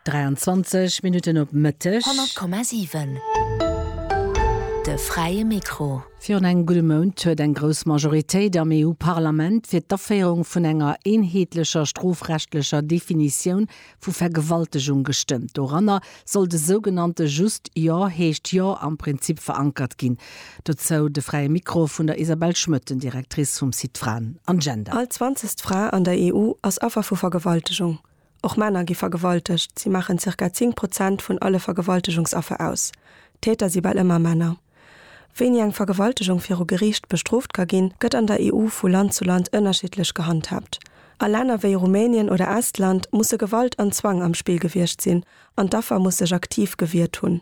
23 Minutten op Mëtteg. 100,7 De fräie Mikro. Virun engem gudde Mount huet eng grouss Majoritéit am EU-Parlament fir d'Aféierung vun enger eenheetlecher strofrechtlecher Definitioun vu Vergewaltegung gestëmmt, doranner soll de sougenannte Just Jo heescht Jo am Prinzip verankert ginn. Dozou de Fräie Mikro vun der Isabelle Schmöten, Directrice vum Site Fraen an Gender. All zwanzegst Fra an der EU ass Affer vu Vergewaltegung. Och Männer gi vergewaltegt, si maachen zirka 10 Prozent vun alle Vergewaltegungsaffer aus. D'Täter si bal ëmmer Männer. Wéini eng Vergewaltegung viru Geriicht bestrooft ka ginn, gëtt an der EU vu Land zu Land ënnerschiddlech gehandhaabt. A Länner wéi Rumänien oder Estland musse Gewalt an Zwang am Spill gewiescht sinn an d'Affer muss sech aktiv gewiert hunn.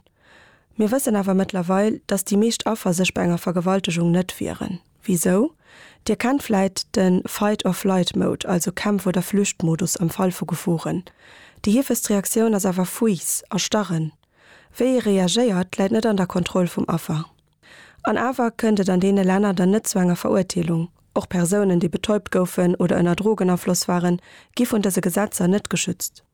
Mir wëssen awer mëttlerweil, datt déi meescht Affer sech bei enger Vergewaltegung net wieren. Wisou? Dir kennt vläit de Fight-or-Flight-Mode, also Kämpf-oder-Flücht-Modus am Fall vu Geforen. Déi heefegst Reaktioun ass awer Fuiss, Erstarren. Wéi ee reagéiert, läit net an der Kontroll vum Affer. An awer kënnt et an deene Länner dann net zu enger Verurteelung. Och Persounen, déi betäubt goufen oder ënner Drogenafloss waren, gi vun dëse Gesetzer net geschützt.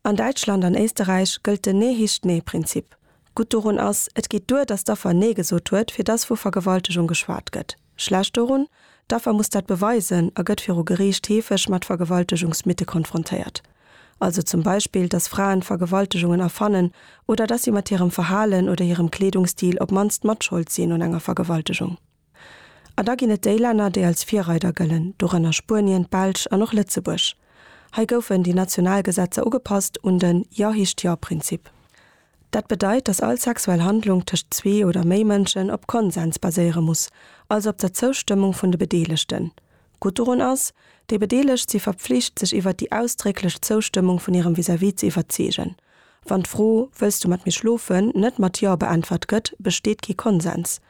An Däitschland an Éisterräich gëllt den Ne-hischt-ne-Prinzip. Gutt dorun ass, et geet duer, datt d'Affer Nee gesot huet, fir datt vu Vergewaltegung geschwat gëtt. Schlecht dorun, D'Affer muss dat beweisen a gëtt viru Geriicht heefeg mat Vergewaltegungsmythe konfrontéiert. Also zum Beispill, dass Fraen Vergewaltegungen erfannen oder dass si mat hirem Verhalen oder hirem Kleedungsstil op mannst matschold sinn un enger Vergewaltegung. A da ginn et déi Länner, déi als Virreider gëllen, dorënner Spuenien, d'Belsch an och Lëtzebuerg. Hei goufen déi national Gesetzer ugepasst un den Ja-Hicht-Ja-Prinzip. Dat bedeit, dass all sexuell Handlung tëscht zwee oder méi Mënschen op Konsens baséiere muss, also op der Zoustëmmung vun de Bedeelegten. Gutt dorun ass, Déi Bedeelegt si verpflicht, sech iwwert déi ausdrécklech Zoustëmmung vun hirem Vis-à-vis ze iwwerzeegen. Wann d'Fro Wëlls du mat mir schlofen? net mat Jo beäntwert gëtt, besteet kee Konsens.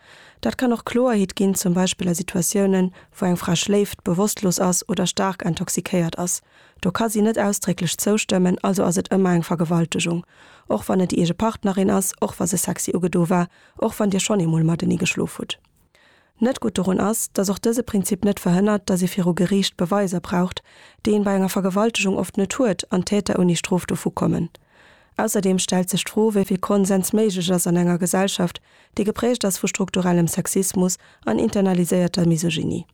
Dat kann och Kloerheet ginn, zum Beispill a Situatiounen, wou eng Fra schléift, bewosstlos ass oder staark intoxikéiert ass, Do ka si net ausdrécklech zoustëmmen, also ass et ëmmer eng Vergewaltegung. Och wann et déi eege Partnerin ass, och wa se sexy ugedo war, och wann Dir schonn eemol matenee geschlof hutt. Net gutt dorun ass, datt och dëse Prinzip net verhënnert, datt ee viru Geriicht Beweiser braucht, déi een bei enger Vergewaltegung oft net huet, an d'Täter ouni Strof dovu kommen. Ausserdeem stellt sech d'Fro, wéi vill Konsens méiglech ass an enger Gesellschaft, déi geprägt ass vu strukturellem Sexismus an internaliséierter Misogynie.